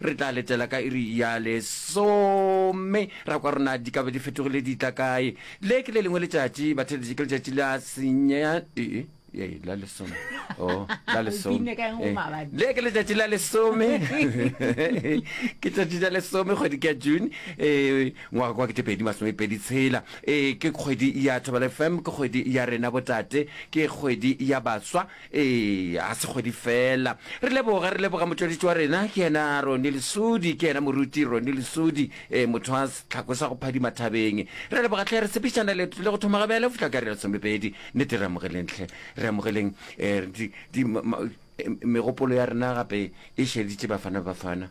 Re tla letela ka iri ya lesome ra kwa rona di ka be di fetogile di tla kae. Le ke le lengwe letšatši batheletši ke letšatši la senye ee ee la lesome oh la lesome Alpine ka eng o Eh, maabane? le ke letšatši la lesome ke tšatši la lesome kgwedi ke ya june um ngwaga kwa kete pedi masome pedi tshela um ke kgwedi ya thobela fm ke kgwedi ya rena botate ke kgwedi ya baswa Eya, ga se kgwedi fela. Re leboga, re leboga motšweletši wa rena, ke yena Roni Lesudi, ke yena moruti Roni Lesudi, e, motho wa setlhako sa go phadima thabeng. Re leboga tlhe, re sepišana leeto le go thoma ga bjale go fihla ka re lesomepedi. Nnete, re amogeleng tlhe, re amogeleng e, di, di, ma, e, megopolo ya rena gape e šeditše Bafana Bafana.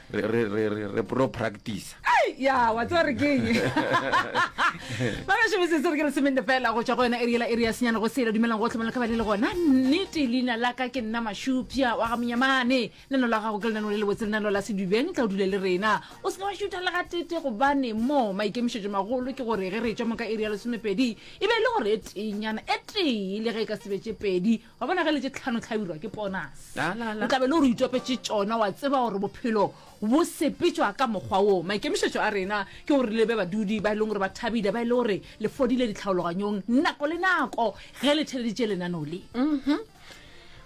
re re re re re pro practice Ai, ya wa tseba re keng ba gašo bosese re ke re semende fela go tšwa go yona eriela ere ya senyane go sele dumelang go tlhomela ka ba le le gona nnete leina la ka ke nna mašupša wa ga monyamane leno la gago ke lenano le lebotse lenano la sedubeng tla o dule le rena o seke wa šutha le ga tete gobane mo maikemišetšo magolo ke gore ge re tšwa mo ka ere ya lesomepedi e be e le gore e tenyana e tee le ge e ka sebetše pedi wa bona ge le tše tlhano tlhabirwa ke ponase La, la, la. o tlabe le gore o itopetše tšona wa tseba gore bophelo bo sepetšwa ka mokgwa woo maikemišetšo a rena ke gore le be badudi ba e leng gore ba thabile ba e le gore le fodile ditlhaologanyong nako le nako ge le theleditše lenano le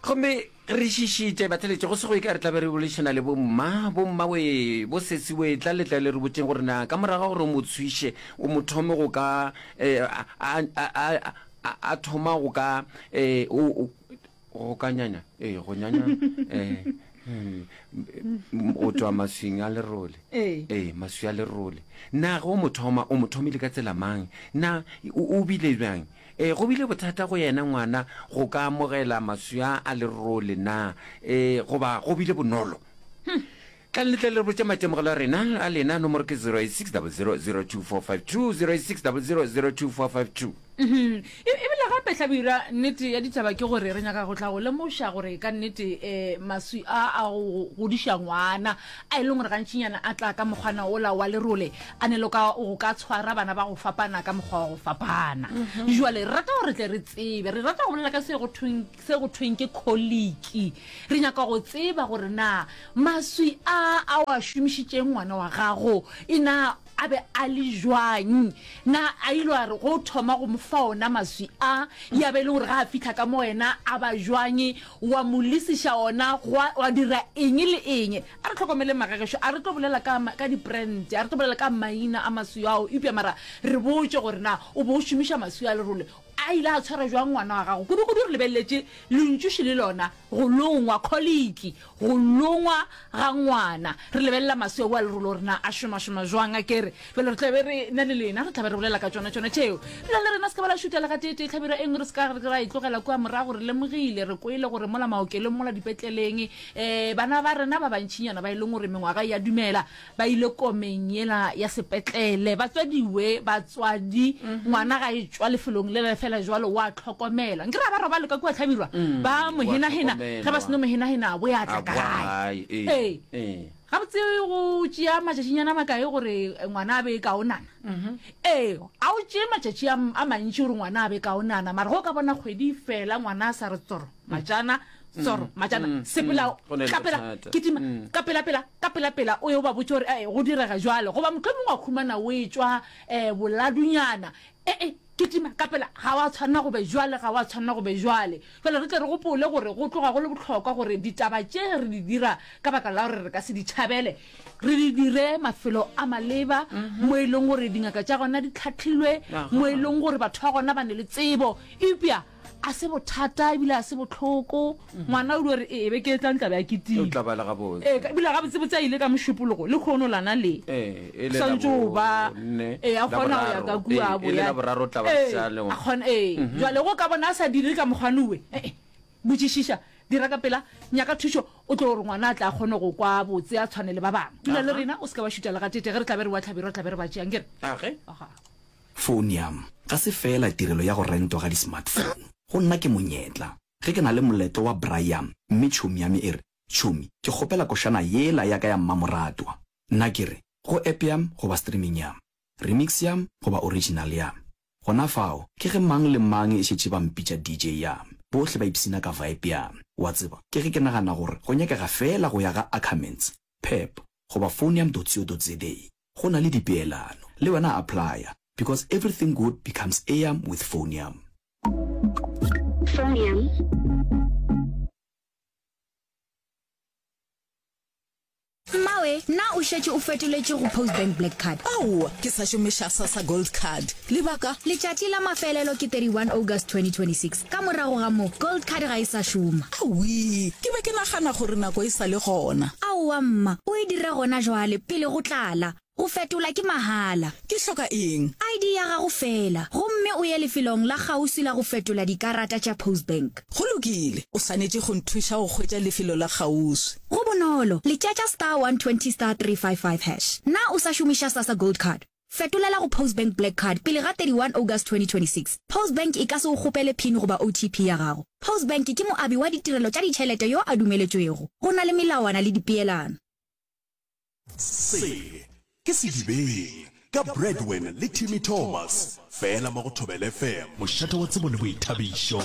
gomme re šišitše batheletše go sego e ka re tlabe re bolešana le bomma bomma we bo sesiwe tla letla le re botseng gore na ka morago ga gore o mo tshwiše o mo thome go ka eh, a- a- a- a- a, a thoma go ka eh, o, o, go ka nyanya eh, go nyanya eh, hmm, m- go tšwa maswing a lerole Ee. ee maswi a lerole na ge o mo thoma o mo thomile ka tsela mang na o o bile bjang ee go bile bothata go yena ngwana go ka amogela maswi a a lerole na ee goba go bile bonolo Tlang le tle le re botše maitemogelo a rena, a lena, nomoro ke 0860002452, 0860002452. E, ebile gape, Hlabirwa, nnete ya ditaba ke gore re nyaka go tla go lemoša gore ka nnete e, maswi a a go godiša ngwana, a e leng gore gantšinyana a tla ka mokgwana ola wa lerole, a ne le ka go ka tshwara bana ba go fapana ka mokgwa wa go fapana. Bjale re rata gore re tle re tsebe, re rata go bolela ka se go thweng, se go thweng ke kholiki. Re nyaka go tseba gore na maswi a a o a šomišitšeng ngwana wa gago e na a be a le jwang na a ile a re go thoma go mo fa ona maswi a ya be e le gore ga a fitlha ka mo wena a ba jwang wa mo lisiša ona wa dira eng le eng a re tlhokomele magagešo a re tlo bolela ka ka diprente a re tlo bolela ka maina a maswi ao eupša mara re botse gore na o bo o šomiša maswi a lerole A ile a tshwara bjang ngwana wa gago? Kudukudu re lebeleletše lentšuši le lona, go longwa, kholiki, go longwa ga ngwana. Re lebelela maswi a boa lerolo gore na a šomašoma bjang. A ke re, bjale re tla be re na le lena, re tla be re bolela ka tšona, tšona tšeo. Lena le rena se ka ba la šuta le gateetee tlhabiro e nngwe, re se ka ra e tlogela kua morago. Re lemogile, re kwele gore mola maokelong, mola dipetleleng, um bana ba rena ba bantšinyana ba e leng gore mengwaga e a dumela, Ba ile komeng yela ya sepetlele. Batswadiwe, batswadi, ngwana ga e tšwa lefelong le le fela jwalo, wa tlhokomela. Nke ra ba robale ka kua Tlhabirwa, ba mo hena-hena, ge ba seno mo hena-hena, a bo ya tla ka gae. Ee. Gabotse go tšea matšatšinyana makae gore ngwana a be kaonana? Ee, a o tšee matšatši a mantši gore ngwana a be kaonana, mara go ka bona kgwedi fela ngwana a sa re tsoro. Matšana, Tsoro, Matšana, sepela, tlapela, kitima, ka pelapela, ka pelapela, o ye o ba botše gore go direga jwalo, goba mohlomongwe wa khumana o etšwa boladunyana, e-e, kitima, ka pela, ga wa tshwanela go be jwale, ga wa tshwanela go be jwale. Jwale re tle re gopole gore go tloga go le bohlokwa gore ditaba tše re di dira ka baka la gore re ka se di tšhabele, re di dire mafelo a maleba, mo e leng gore dingaka tša gona di hlahlilwe, mo e leng gore batho ba gona ba ne le tsebo, eupša. a se bothata ebile a se botlhoko ngwana o dio re ee be ke etlang tlabe a ketile tla bala ga botse ee ebile ga botse botse a ile ka mošupologo le kgono lana le ee le santse o ba ee a kgona go ya ka kua bo ya la boraro tla ba sa le a kgona ee jwa le go ka bona a sa dire ka mogwanoe ee botšišiša dira ka pela nyaka thušo o tlo gore ngwana a tla kgone go kwa botse a tshwane le ba bangwe dula le rena o se ka wa šuta le ga tete ge re tlabe re wa tlhabero tlabe re ba tšeang ke re age aha Founo ya m ga se feela tirelo ya go rentwa ga di-smartphone. Go nna ke monyetla. Ge ke na le moletlo wa braai ya m mme tšhomi ya me e re, Tšhomi, ke kgopela košana yela ya ka ya mmamoratwa, nna ke re, go app ya m goba streaming ya m, remix ya m goba original ya m. Gona fao, ke ge mang le mang e šetše ba mpitša DJ ya m, bohle ba ipshina ka vibe ya m. Wa tseba, ke ge ke nagana gore go nyakega feela go ya ga Ackermans, Pep goba Founo ya m dotsio dotze day. go na le dipeelano le wena applya because everything good becomes eam with phoneam. Mmawe, na o šetše o fetoletše go Postbank Black Card? Aowa, ke sa šomiša Sassa Gold Card. Lebaka, Letšatši la mafelelo ke 31 August 2026, ka morago ga moo Gold Card ga e sa šoma. Awii, ke be ke nagana gore nako e sa le gona. Aowa mma, o e dire gona jwale pele go tlala. Go fetola ke mahala. Ke hloka eng? ID ya gago feela, gomme o ye lefelong la kgauswi la go fetola dikarata tša Postbank. Go lokile, o swanetše go nthuša go hwetša lefelo la kgauswi. Go bonolo, letšatša star 120 star 355 hash. Na o sa šomiša Sasa Gold Card? Fetolela go Postbank Black Card pele ga 31 August 2026. Postbank e ka se go kgopele pin goba OTP ya gago. Postbank ke moabi wa ditirelo tša ditšhelete yo a dumeletšwego. Go na le melawana le dipeelano. Se ke Sedibeng ka Bradwin le Timmy Thomas, fela mo go Thobela FM. Mošate wa tsebo le boithabišo.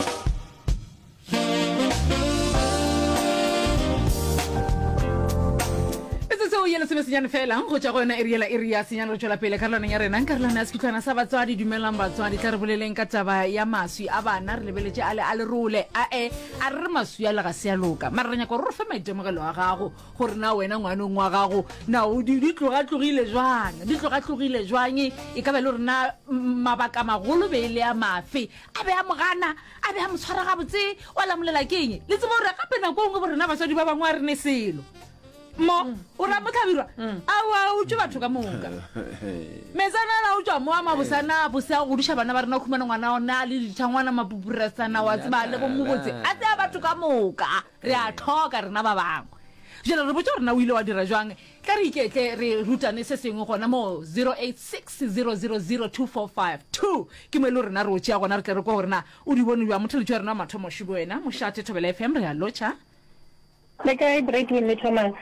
ye lesome senyane fela go tša go yona eri yela eri ya senyane re tšwela pele karolwaneng ya rena karolwana ya sekhutlhwana sa batswadi dumelang batswadi tla re boleleng ka taba ya maswi a bana re lebeletše a le a lerole ae a re re maswi a lega se ya loka mara re nyaka gore re fe maitemogelo a gago gore na wena ngwanong wa gago na di tlogatlogile jwang di tlogatlogile jwang e ka ba le gore na mabaka magolo be e le ya mafe a be a mogana a be a mo tshwara gabotse wa lamolela ke eng le tsebo gore gape nako ngwe bo rena batswadi ba bangwe a re ne selo mo mm. o ra motlhabirwa mm. aoa o tswe batho ka moka metsana la o tswa mo a mabosana bose a godiša bana ba rena o khumana ngwana ona le dithangwana mapupuresana wa tseba le bomobotse a tseya batho ka moka Re a hloka rena ba bangwe. Bjale re botša gore na o ile wa dira bjang. Tla re iketle re rutane se sengwe gona mo 0860002452. Ke mo e le rena re o tšea gona re tle re kwe gore na o di bone bjang. Motheletši wa rena wa mathomo Šubo wena. Mošate Thobela FM re a lotšha. Le kae Bradwin le Thomas?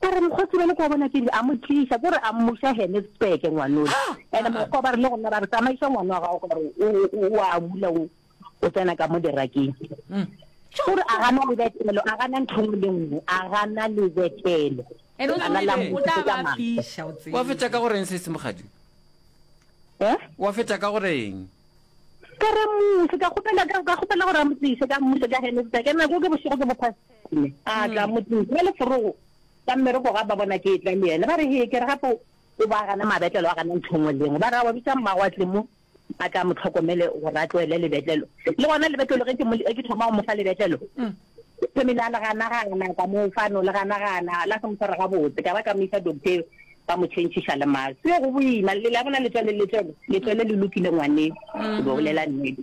ka re mokgotsi ba le kwa bona ke re a mo tliša ke re a mmuša henesburg ngwanole ah, and ah, ah. mokgwa ba re le gona ra re tsamaiša ngwana wa gago gore o a bula o tsena ka mo derakeng mm. ke re a gana lebetelo a gana ntho ngwe le nngwe a gana lebetelo wa fetsa ka goreng se se mogadi eh? wa fetsa ka goreng ka re muse ka kgopela gore a mo tlise ka muse ka henesburg ene ko ke bošego ke bophase Kune a tla motseng ka leforogo ka mmereko ga ba bona ke etla le yena ba re hee ke re gape o ba gana mabetlelo a gana ntho nngwe le nngwe ba re a wa bitsa mmago a tle mo a tla mo tlhokomele gore a tloele lebetlelo le gona lebetlelo ge ke thoma go mo fa lebetlelo family a le ganagana ka mo fano le ganagana la se mo tshwara gabotse ka ba ka mo isa doctor ba mo changeša le maso yo go boima le la bona letswele letswele letswele le lokile ngwaneng ke bolela nnete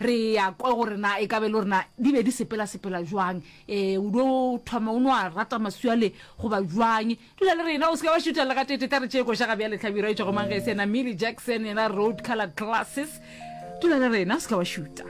re ya kwa gore na e ka be le gorena di be di sepelasepela jwang um o do thoma o no a rata maswiale goba jwang dula le rena o se ka ba šutelela ka tete tla re tšee košaga bja letlhabiro e tšwago mangese yena milly jackson yena road color glasses dula le rena o se ka ba šuta